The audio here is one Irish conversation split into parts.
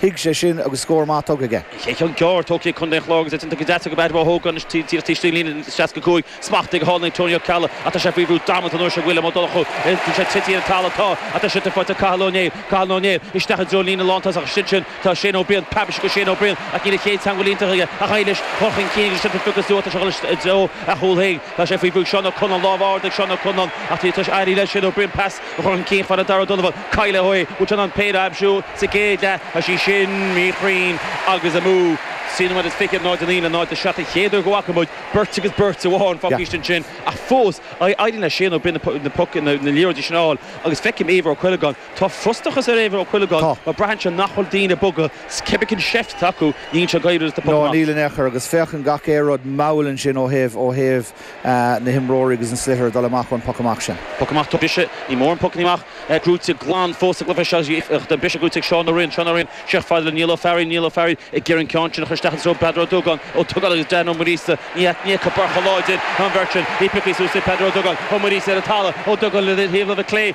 Thuig sé sin agus scór maith tógtha aige. Ceann gearr tógtha ag Contae an Chláir agus Étaín Tuke Deaton go Beairtle Mhaigh Eo gan iarracht taobh istigh de líne an 65. Smachtaithe go hálainn ag Tony Ó Ceallaigh ach tá sé faoi bhrú damanta an uair seo. William Ó Donnchú ag titim ar an talamh. Tá ach tá an sliotar faighte ag Cathal Ó Néill. Cathal Ó Néill isteach i dtreo líne lántosach. Is ansin atá Shane Ó Briain. Paibeis acu Shane Ó Briain ach níl a chéad teangmháil iontach aige ach aghaidh leis chun chun cinn agus titim Fiocas Dubh ag dul i dtreo a chúl féin. Tá sé faoi bhrú ag Seán Ó Conláin. Lámh ard ag Seán Ó Conláin ach tá ag éirí le Shane Ó Briain. Pas. a chur chun cinn fhad le Darragh Ó Donnabháin cailleadh é. Bhuail sé an péire ab fhiú sa gcéad leath, tá sí sin míchruinn agus amú. Sin an rud is fiche, 0-9 le 0-7. An chéad uair go bhfaca muid beirt agus beirt amháin fágtha istigh ansin ach fós éiríonn le Shane Ó Briain na puc na liathróidí sin a fháil agus feicim Éibhear Ó Cuileagáin. Tá frustrachas ar Éibhear Ó Cuileagáin Tá. mar braitheann sé nach bhfuil daoine ag bogadh is cibé cén seift atá acu níl sé ag éirí agus tá poc No amach. níl in aon chor agus féachann gach aon rud mall ansin ó thaobh ó thaobh. na himreoirí agus an sliotar ag dul amach ón poc amach sin. Poc amach tógtha briseadh, níl mórán pocanna amach gnóite glan fós sa gcluiche seo. Tá an briseadh gnóite ag Seán Ó Rinn. Seán Ó Rinn, isteach fhad le Niall Ó Fearraigh. Niall Ó Fearraigh ag iarraidh an ceann sin a chur isteach i dtreo Peadar Ó Dúgáin. Ó Dúgáin agus Dan Ó Muiríosa. Ní fheicfeá beirt chomh láidir ná an bheirt sin. É pioctha suas ag Peadar Ó Dúgáin. Ó Muiríosa ar an talamh. Ó Dúgáin ar thaobh na láimhe clé.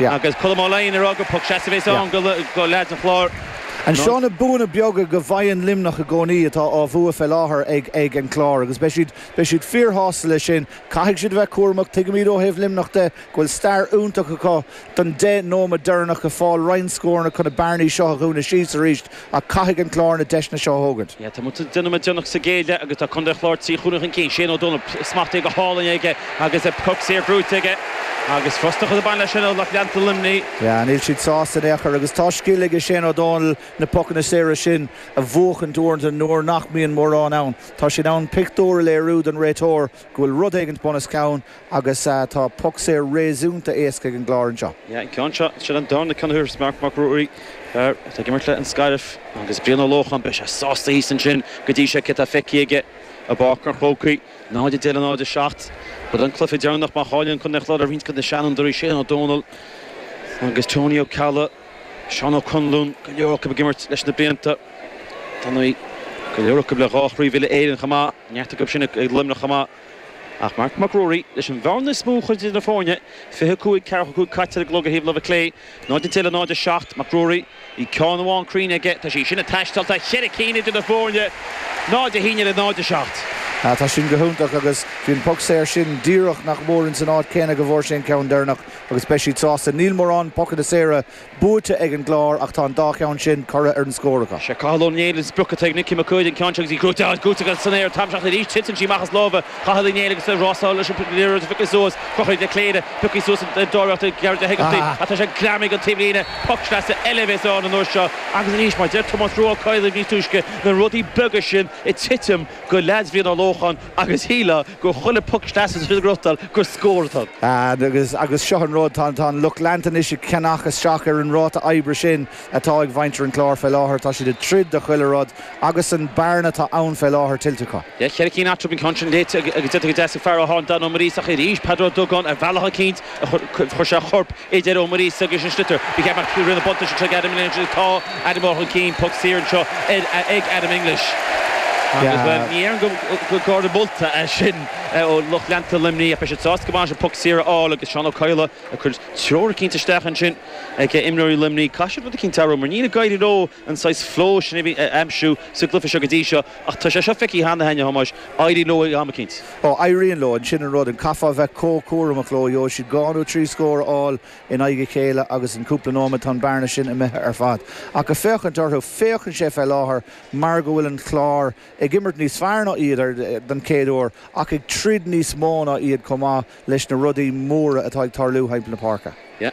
Agus Colm Ó Laighin ag rá gur poc sleasa a bheas ann do leaids an Chláir. An seo na buanna beaga go bhfaigheann Luimneach i gcónaí atá á mbua fé láthair ag an gClár agus beidh siad beidh siad fíor shásta leis sin. Caithfidh siad a bheith cúramach. Tuigimid ó thaobh Luimneach de go bhfuil stair iontach acu don deich nóimead deireanach ag fáil roinnt scóranna chun na bearnaí seo a dhúnadh síos arís. Ach caithfidh an Clár na deiseanna seo a thógaint. Tá muid ag déanamh déanach sa gcéad leath agus tá Contae an Chláir trí chúilín chun cinn. Shane Ó Dónaill, smachtaithe go hálainn aige agus an poc saor gnóite aige. Agus frustrachas ag baint leis sin ó lucht leanta Luimnigh. Yeah, níl siad sásta in aon chor agus tá scil aige Shane Ó Dónaill na pocanna saora sin a bhuachaint uaireanta nuair nach mbíonn mórán ann. Tá sé in ann pictiúr a léiriú don réiteoir go bhfuil rud éigin bunoscionn agus tá poc saor réasúnta éasca ag an gClár anseo. Yeah, an ceann seo, sin an darna ceann a thógfas Marc Mac Ruairí, fear atá ag imirt le An Scairbh agus Brian Ó Lócháin. Beidh sé sásta thíos ansin go dtí seo cé atá feicthe aige i bPáirc an Chrócaigh. 0-10 le 0-7. Ba é an cluiche deireanach má chailleann Contae an Chláir ag roinnt de na seanfhondúirí Shane Ó Domhnaill agus Tony Ó Ceallaigh. Seán Ó Conláin, go leor acu ag imirt leis na blianta. Tá go leor acu le dhá Chraobh Uile-Éireann chomh maith, neart acu sin ag Luimneach chomh maith. Ach Marc Mac Ruairí, leis an mbearna is mó a chur idir na foirne, 25, ceathracha cúig caite ar an gclog ar thaobh na láimhe clé, 0-10 le 0-7, Mac Ruairí, bhí ceann amháin cruinn aige, tá sí sin ag taisteal, tá ceithre cinn idir na foirne, 0-11 le 0-7. Tá sin go hiontach agus bhí an poc saor sin díreach nach mór ins an áit céanna go bhfuair sé an ceann deireanach. agus beidh siad sásta. Níl mórán pocanna saora buaite ag an gClár ach tá an dá cheann sin curtha ar an scór acu. Sé Cathal Ó Néill an sprioc atá ag Nickie Mac Uaid, an ceann seo agus í crochta agus crochta san aer tamall seachtain arís titeann sí amach as lámha Chathail Uí Néill agus ag rásáil leis an liathróid a phiocadh suas, Conchúr Ó Cléirigh, pioctha suas an dáréagtha Gearóid Hegarty ach tá sé greamaithe ar an taobhlíne, poc sleasa eile a bheas ann an uair seo agus arís mar a deir Tomás Rua Ó Cadhla níos túisce na rudaí beaga sin ag titim go leaids Bhriain Uí Lócháin agus shílfeá gur chuile poc isteach sa trian rutar gur scór atá ann. Agus agus seo an rud, tá an lucht leanta anois ag ceannach isteach ar an ráta oibre sin atá ag Mhuintir an Chláir fé láthair. Tá siad ag troid do chuile rud agus an bearna atá ann fé láthair tuillte acu. Cheithre cinn eatarthu, an ceann sin léite agus léite go deas ag fear Atháin, Domhnall Ó Muiríosa, ach arís Peadar Ó Dúgáin, ar bhealach eicínt. Chuir sé a chorp idir Ó Muiríosa agus an sliotar. Ba cheart nach raibh na buntáistí seo ag Adam English. Tá Adam mór chun cinn. Poc saor anseo ag Adam English. Bhuel, ní dhéarfainn gur gártha molta é sin ó lucht leanta Luimnigh ach beidh siad sásta go maith leis an bpoc saor a fháil agus Seán Ó Cadhla ag cur treoir eicínt isteach ansin ag imreoirí Luimnigh. Caithfidh siad rud eicínt a athrú mar níl ag éirí leo. an saghas flow sin a aimsiú sa gcluiche seo go dtí seo ach tá sé seo feicthe cheana a'inn, a Thomáis, éiríonn leo ag am eicínt. Ó, éiríonn leo, ansin an rud, an chaithfeá a bheith comh cúramach leo, gheobhaidh siad dhá nó trí scór a fháil in aghaidh a chéile agus in cúpla nóiméad tá an bearna sin imithe ar fad. Ach a' féachaint orthu, féachann sé fé láthair mar go bhfuil an Clár ag imirt níos fearr ná iad, ar, don chéad uair, ach ag troid níos mó ná iad chomh maith leis na rudaí móra atá ag tarlú thimpeall na páirce. Yeah.